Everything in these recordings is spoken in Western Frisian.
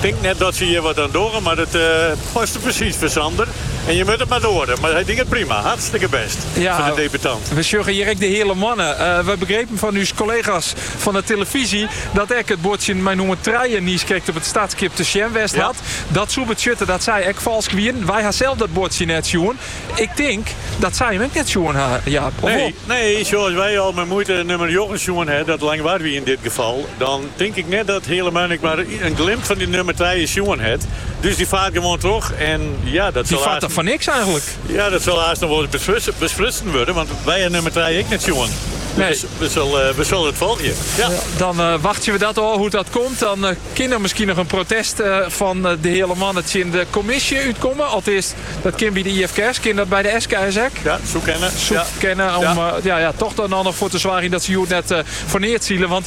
Tink net dat se hjir wat oan dogge, mar it paste presys foar Sander. En je moat it mar doare. Mar hy docht it prima. Hartstikke best foar de debutant. We sjogge hjir ek de Heale Moanne. We begrepen fan ús kollega's fan 'e telefyzje dat ek it buordsjen mei nûmer trije niis krekt op it startskip te sjen west hat. Dat soe betsjutte dat sy ek falsk wienen. Wy ha sels dat buordsje net sjoen. Ik tink dat sy him ek net sjoen ha, Jaap. Of wol? Nee, nee, sjoch, as wy al mei muoite nûmer njoggen sjoen ha, dat Langwar wie yn dit gefal, dan. Tink ik net dat de Heale Moanne ek mar in glimp fan dy nûmer trije sjoen hat. Dus dy faart gewoan troch. En ja, dat sil haast. fan niks eigenlik. Ja, dat sil haast noch wol ris besprutsen wurde, want wy ha nûmer trije ek net sjoen. Nee. Dus we sille it folgje. Ja. Dan eh, wachtsje we dat ôf hoe't dat komt. Dan uh, kin der miskien noch in protest eh, fan de Heale Moanne tsjin de kommisje útkomme. Alteast, dat kin by de IFKS, kin dat by de SKS ek. Ja, soe kinne. Soe kinne ja. ja. Ja, toch dan noch foar te soargjen dat se hjir net uh, foar neat sile. Want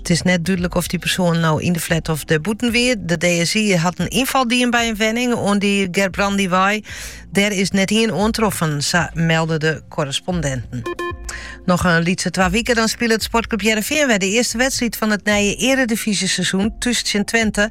It is net dúdlik oft dy persoan no yn de flat of dêrbûten wie. De DSI hat in ynfal dien by in wenning oan dy Gerbrandywei. Dêr is net ien oantroffen, sa melde de korrespondinten. Noch in lytse twa wiken dan spilet Sportclub Hearrenfean wer de earste wedstriid fan it nije eredifyzjeseizoen thús tsjin Twente.